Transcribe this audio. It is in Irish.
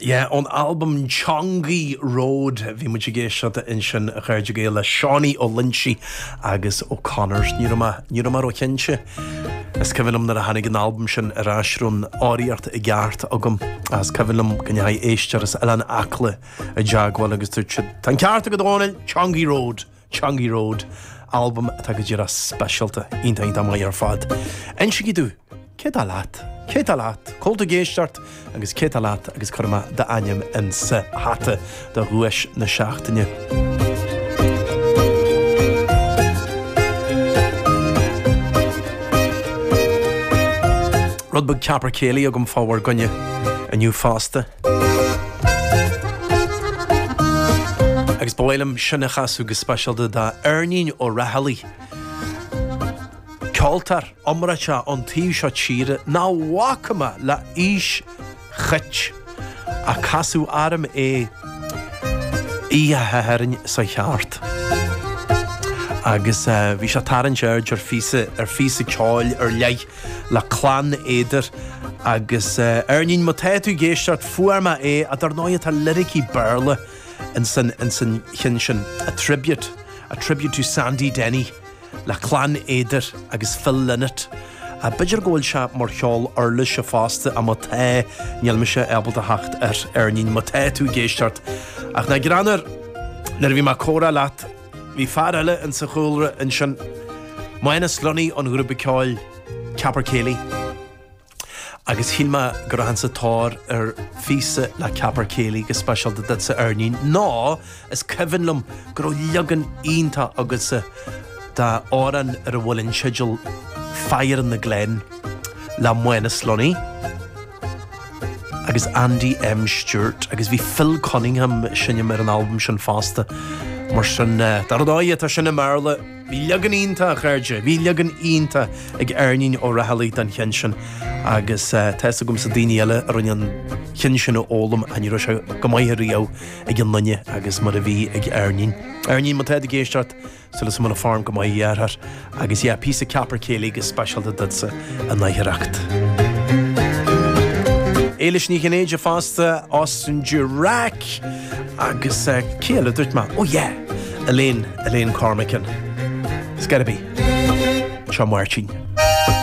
Yeah, ón albam Chongi Road. Bhí muid ag éisteacht ansin a chairde Gael le Seánie Ó Loinsigh agus O'Connors. Ní raibh mé, ní raibh mé ró chinnte. Is cuimhin liom nuair a tháinig an albam sin ar ais raibh an fhoghraíocht i gceart agam. Agus is cuimhin liom go ndeachaigh éisteoir as Oileán Acla i dteagmháil agus dúirt siad Tá an ceart agat a Dhónaill, Chongi Road! Chongi Road, albam atá go díreach speisialta, iontach, iontach maith ar fad. Insígí domh, cé tá leat? Cé tá leat? Cá bhfuil tú ag éisteacht agus cé tá leat agus cuirfidh mé d'ainm insa hata do dhuais na seachtaine. Rud beag Capercaillie agam fá bhur gcoinne inniu fosta. Agus ba mhaith liom sin a chasadh go speisialta d'Eirnín Ó Raghallaigh, ceoltóir iomráiteach ón taobh seo tíre, nach bhfaca mé le haois chait, ach casadh orm é Oíche Shathairn seo chuaigh thart. Agus bhí sé ag tarraingt aird ar phíosa ceoil ar leith. le Clann Éadair. Agus Eirnín, má tá tú ag éisteacht, fuair mé é, ach dar ndóighe tá liricí Béarla insan cheann sin, a tribute, a tribute to Sandy Denny, le Clann Éadair agus Phil Lynott. B'fhéidir go bhfuil sé mar cheol uirlise fosta, ach má tá, níl mise ábalta a theacht air, Eirnín, má tá tú ag éisteacht. Ach nach greannmhar, nuair a bhí mé ag comhrá leat, Bhí fear eile insa chúlra ansin, Mánas Lunny ón ghrúpa ceoil Capercaillie, agus gheall mé go rachainn sa tóir ar phíosa le Capercaillie go speisialta duitse Eirnín, nó is cuimhin liom go raibh leagan iontach agatsa d'amhrán ar a bhfuil an teideal Fire in the Glen le Mánas Lunny. agus Andy M Stewart agus bhí Phil Cunningham ag seinm ar an albam sin fosta. Mar sin, dar ndóighe, tá sin i mBéarla. Bhí leagan iontach, a chairde, bhí leagan iontach ag Eirnín Ó Raghallaigh den cheann sin agus tá fhios agamsa daoine eile a rinne an cheann sin a fhoghlaim ach ní raibh sé chomh maith riamh ag aon duine agus mar a bhí ag Eirnín. Eirnín, má tá tú ag éisteacht, Súil agam go bhfuil an form go maith a dheartháir agus yeah píosa Capercaillie go speisialta duitse a n-oidhreacht. Éilis Ní Chinnéide fosta as an dirac agus céile duirt amach ó yeah Elaine Elaine Cormican. It's gotta be Seo Máirtín.